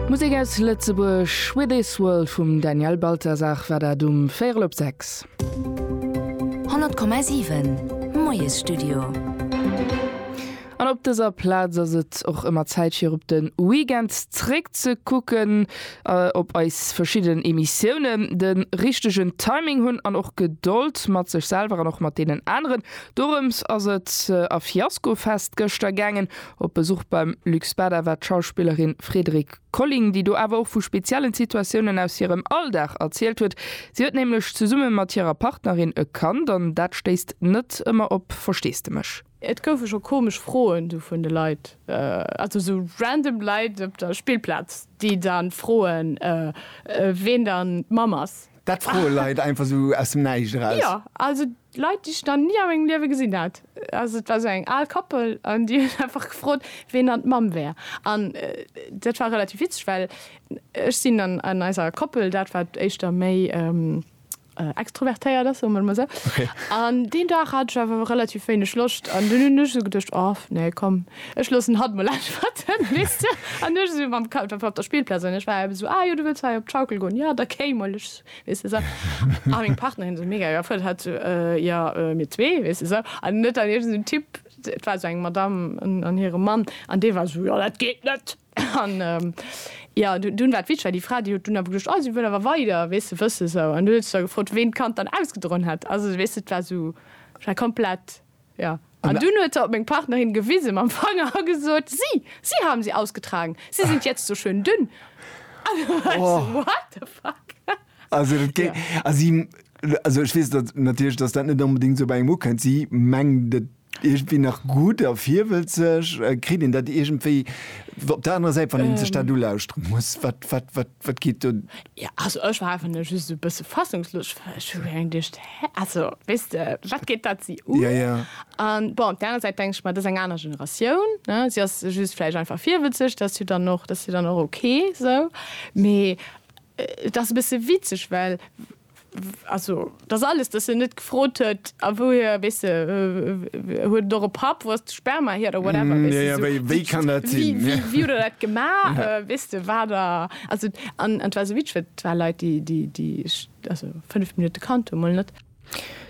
Musek aus Lëtzebuerg, With This World vum Daniel Balthasar war dat um véierel op sechs. 100,7 Moiesstudio. An op dëser Plaz ass et och ëmmer Zäit fir op de Weekend zréck ze kucken, op eis verschidden Emissiounen. De richtegen Timing hunn an och Gedold mat sech selwer an och mat deenen aneren, dorëms ass et a Fiasko Fest gëschter gaangen. Op Besuch beim Luc Spada war d'Schauspillerin Frédérique Colling, déi do awer och vu speziellen Situatiounen aus hirem Alldag erzielt huet. Si huet nämlech zesumme mat hirer Partnerin e Kand an dat stéisst net ëmmer op Versteesdemech. Et goufe scho komesch Froen du vun de Leit, also sou random Leit op der Spillplaz, déi dann froen, ween dann d'Mamm ass. Dat froe Leit einfach sou aus dem Näischt eraus? Jo, also Leit, déi ech nach ni a mengem Liewe gesinn hat. Also et war esou eng al Koppel an déi huet einfach gefrot, ween dann d'Mamm wär. An dat war relativ witzeg, well ech sinn an an eiser Koppel dat, wat éischter méi extrovertéiert ass, soe mer et emol esou. An deen Dag hat ech awer relativ wéineg Loscht an dunn hunn ech esou geduecht, oh nee komm, ech loossen hatt emol äntwerten, weess de. An du ech esou mam Kapp op der Spillplaz an ech war eben esou, ah jo, du wëlls hei op d'Schaukel goen, jo da kéi mol, ech Weess de esou. A meng Partnerin esou mega erfëllt, hat esou, Äh, jo, mir zwee, weess de esou. An net an iergend en Typ, et war esou eng Madamm an hire Mann, an dee war esou, Jo, dat geet net. An, jo, dunn war et witzeg, well déi Fra, déi huet dunn awer geduecht, Oh, si wëll awer weider, weess de, wëss esou. An du huet sech da gefrot, ween d'Kand dann ausgedroen hätt. Also, weess de, et war esou, et war komplett. Ja. An dunn huet se op meng Partnerin gewise mam Fanger a gesot, Sie, Sie haben sie ausgetragen. Sie sind jetzt so schön dünn. An du war ech so, What the fuck? Also, dat géi, also, si, also ech weess dat natierlech, dass dat net onbedéngt esou bei engem ukënnt. Si mengt et iergendwéi nach gutt a virwëllt sech. Kritt een dat iergendwéi op der anerer Säit, wann een sech dat ulauschteren muss? Wat, wat, wat? Wat geet do? Jo, also ech war einfach nëmme just e bësse fassungslos, well ech hu reng geduecht, hä? Also, weess de, wat geet dat si un? Ja, ja. A bon, op där aner Säit denke ech mer, dat ass eng aner Generatioun, ne? Si ass just vläicht einfach virwëtzeg, dat ass jo dann och, dat ass jo dann och ok esou. Mee et ass e bësse witzeg, well. Also, dass alles, dass en net gefrot huet, a wouhier, weess de, huet et och e Papp, wou ass de Sperma hier oder whatever, weess de, sou, wéi, wéi, wéi, wéi huet der dat gemaach, weess de, war der, also, an et war esou witzeg, well et war Leit, déi, déi, déi ech, also, fënnef Minutte kannt hu, mol net.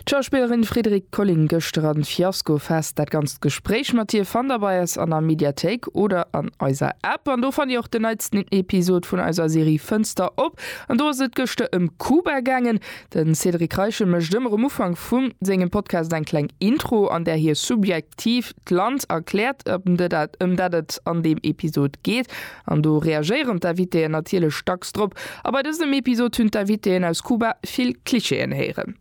D'Schauspillerin Frédérique Colling gëschter an Fiasco Fest. Dat ganzt Gespréich mat hir fannt der bei eis an der Mediathéik oder an eiser App. An do fannt dir och den neitsten Episod vun eiser Serie Fënster op. An do ass et gëschter ëm Kuba gaangen. De Cédric Reichel mécht ëmmer um Ufank vu sengem Podcast eng kleng Intro, an där hie subjektiv d'Land erkläert, ëm de dat ëm dat et an deem Episod geet. An do reagéieren d'Invitéen natierlech dacks drop. A bei dësem Episod hunn d'Invitéen aus Kuba vill Klischeeën héieren.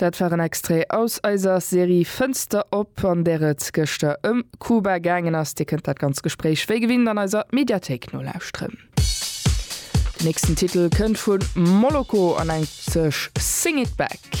Dat war en Extrait aus eiser Serie Fënster op, an där et gëschter ëm Kuba gaangen ass. Dir kënnt dat ganz Gespréich wéi gewinnt an eiser Mediathéik nolauschteren. Den nächsten Titel kënnt vu Moloko an nennt sech Sing It Back.